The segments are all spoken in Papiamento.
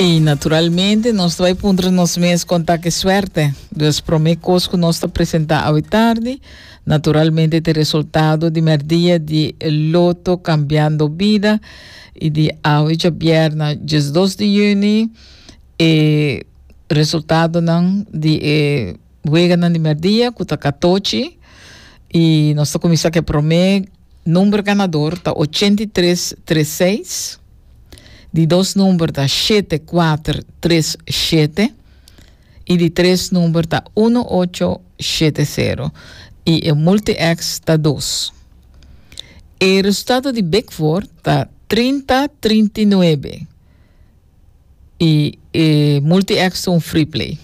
I naturalmente nos ta bai puntra nos mes kon ta ke suerte. Dus promé kos ku nos ta presentá awe tardi, naturalmente te resultado di merdia di Loto Cambiando Vida i di awe djabierna diesdos di juni e resultadonan di e weganan di merdia ku ta katochi i nos ta kuminsá ku e promé Number ganador ta ochenta i tres tres seis. Di dos number ta shete kuater tres shete. I di tres number ta uno ocho shete sero. I e multi-X ta dos. E resultado di Big Four ta trinta trinta i nuebe. I e Multi-X ta un free play.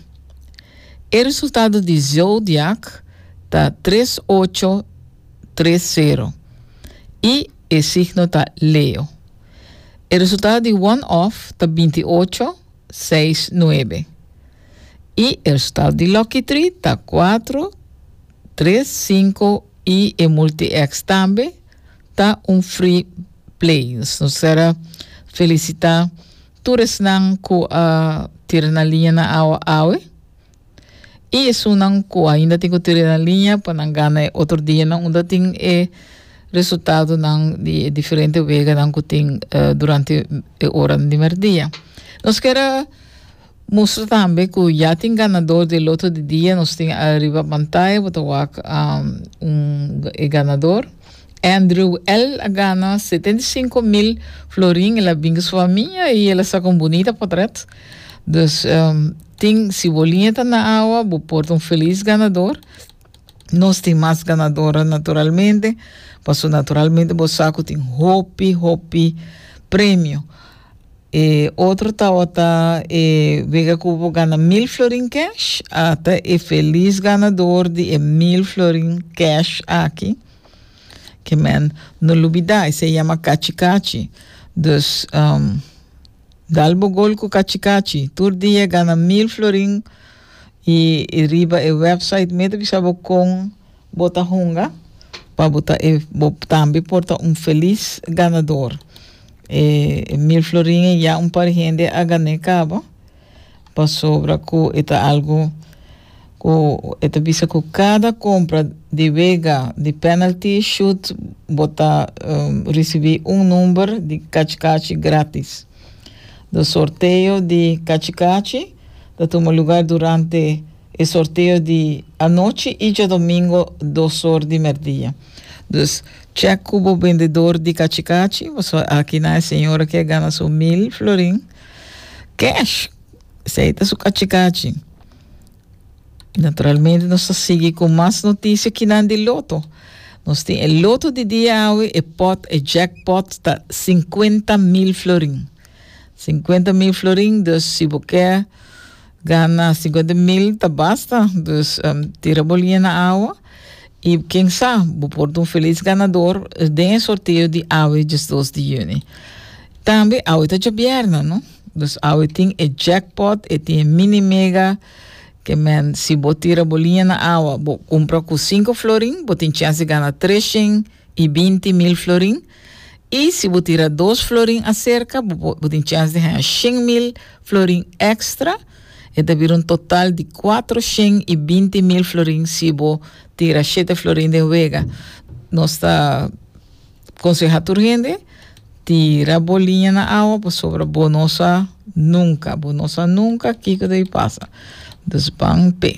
E resultado di Zodiac ta tres ocho tres sero i e signo ta Leo. E resultado di One Off ta binti ocho seis nuebe i e resultado di Lucky Tree ta kuatro tres sinku i e Multi-X tambe ta un free plays. Nos ser a felisitá tur esnan ku a tira na liña na awa awe i esunnan ku ainda tin ku tira na liña pa nan gana e otro dianan unda tin e resultadonan di e diferente weganan ku tin durante e oranan di merdia. Nos kier a Mustra tambe cu ya tin ganador di e loto di dia, nos tin a riba pantaya, bo ta wak un e ganador. Andrew L. a gana setenta i sinku mil florin, el a binga su famia y el a saca un bunita potret. Dus tin si bo liña ta na awa, bo por ta un feliz ganador. Nos tin mas ganadora naturalmente, paso naturalmente bo sa cu tin hopi hopi premio. E otro tawata e wega cu bo gana mil florin cash, a ta e feliz ganador di e mil florin cash aki, que men no lubida, esey yama cachi cachi. Dus dal bo gol cu cachi cachi, tur dia gana mil florin. Y riba e website me ta bisa bo con bo ta hunga pa bo ta e bo tambe por ta un feliz ganador. E mil florin e ya un par hende a gané caba pasobra cu e ta algo cu e ta bisa cu cada compra di wega di penalty shoot bo ta ricibi un number di cachi cachi gratis. De sorteo di cachi cachi. ta tuma lugar durante e sorteo di anochi y djadomingo dos or di merdia. Dus check cu bo bendedor di cachi cachi, bo sa aki na e señora aki a gana su mil florin cash, esey ta su cachi cachi. Naturalmente nos ta sigui cu mas noticia kinan di loto. Nos tin e loto di dia awe, e pot, e jackpot ta cincuenta mil florin. Sinkuenta mil florin, dus si bo ke gana sinkuenta mil ta basta. Dus tira bo liña na awa i ken sa bo por ta un felis ganador den e sorteo di awe diesdos di yüni. Tambe awe ta djabièrna, no? Dus awe tin e jackpot, e tin e mini mega ke men si bo tira bo liña na awa bo kumpra ku sinku florin bo tin chèns di gana treshen i binti mil florin. I si bo tira dos florin aserka bo bo tin chèns di haña shen mil florin èkstra. E ta bira un total di kuater shen i binti mil florin si bo tira shete florin den wega. Nos ta konsehá tur hende, tira bo liña na awa pasobra bo no sa nunka, bo no sa nunka kiko ta bin pasa. Dus ban p'e.